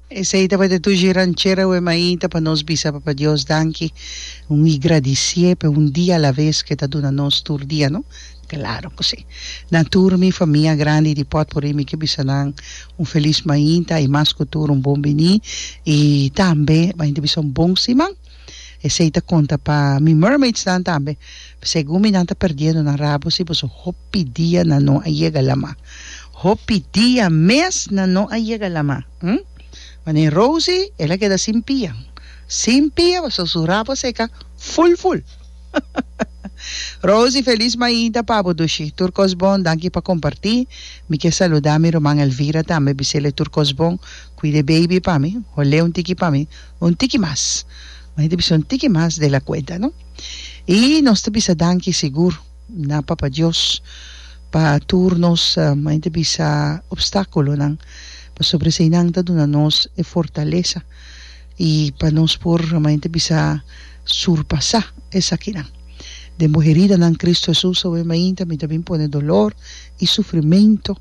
Esei tabata tur dje ranchera wè mainta pa nos bisa Papa Dios danki, un i gradisié p'e un dia alaves ku e ta duna nos tur dia, no? Klaro ku sí! Na tur mi famia grandi di Pòtpuri mi ke bisa nan un felis mainta i mas ku tur un bon biní i tambe mainta bisa un bon siman. Esei ta konta pa mi mermaidsnan tambe, segun mi nan ta perdiendo nan rabo si boso hopi dia nan no a yega lama, hopi dia mes nan no a yega lama, hm, ma den Rosi el a keda sin pia, sin pia pasobra su rabo a seka ful ful. Rosi felis mainta pa bo Dushi, tur kos bon, danki pa komparti, mi ke saluda mi ruman Elvira tambe, bisele tur kos bon, kuida e baby pa mi, hol'e un tiki pa mi, Un tiki mas. Mari ta bisa un tiki mas de la cuenta, no? Y nos ta bisa danki sigur na Papa Dios pa tur nos, mari ta bisa, obstaculonan, pasobra eseinan ta duna nos e fortalesa y pa nos por, mari ta bisa, surpasa esakinan. Den bo heridanan Cristo Jesus awe mainta mi ta bin pone dolor y sufrimento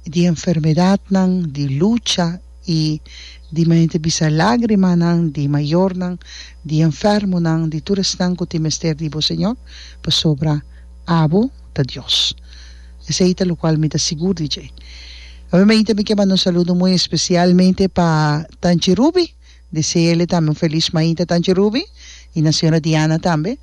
di enfermedadnan, di lucha, I di mente bisa lágrimanan di mayornan, di enfermonan, di tur esnan ku tin mester di bo, Señor, pasobra abo ta Dios. Esei ta lokual mi ta sigur di dje. Nuevamente mi ke manda un saludo muy especialmente pa Tanchi Ruby, deseele tambe un feliz mainta Tanchi Ruby, i na Señora Diana tambe,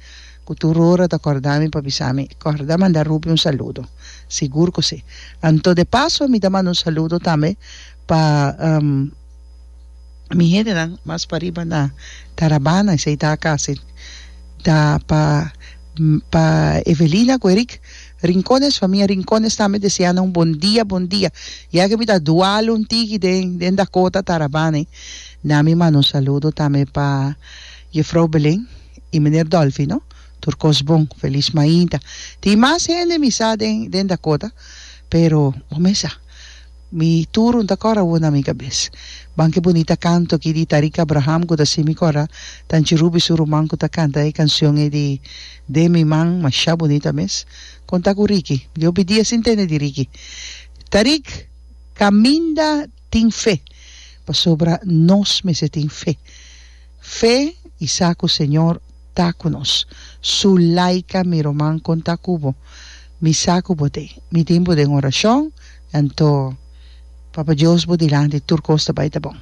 ku tur ora ta kòrda mi pa bisa mi, Kòrda manda Ruby un saludo. Sigur ku si. Anto de paso mi ta manda un saludo tambe Pa mi hendenan mas pariba na Tarabana esei ta a casa e ta pa pa Evelina cu Erick Rincones famia Rincones tambe deseana un bon dia bon dia ya que mi ta dual un tigi den den Dakota Tarabana e na mi manda un saludo tambe pa Jefrouw Belen y Meneer Dolfino tur cos bon feliz mainta tin mas hende mi sa den den Dakota pero bo me sa Mi turun ta cora won na mi cabes. Ban ke bonita canto aki di Tariq Abraham cu ta haci mi cora ta nchi Ruby su ruman cu ta canta e cancion ey di Den mi man masha bonita mes. Con ta cu Ricky? Diopi dia sin tende di Ricky. Tariq caminda tin fe pasobra nos mester tin fe. Fe y sa cu Señor ta cu nos. Su laica mi ruman con ta cu bo. Mi sa cu bo t'ey. Mi tin bo den oracion. Anto, Papa Dios bo dilanti tur cos ta bay ta bon.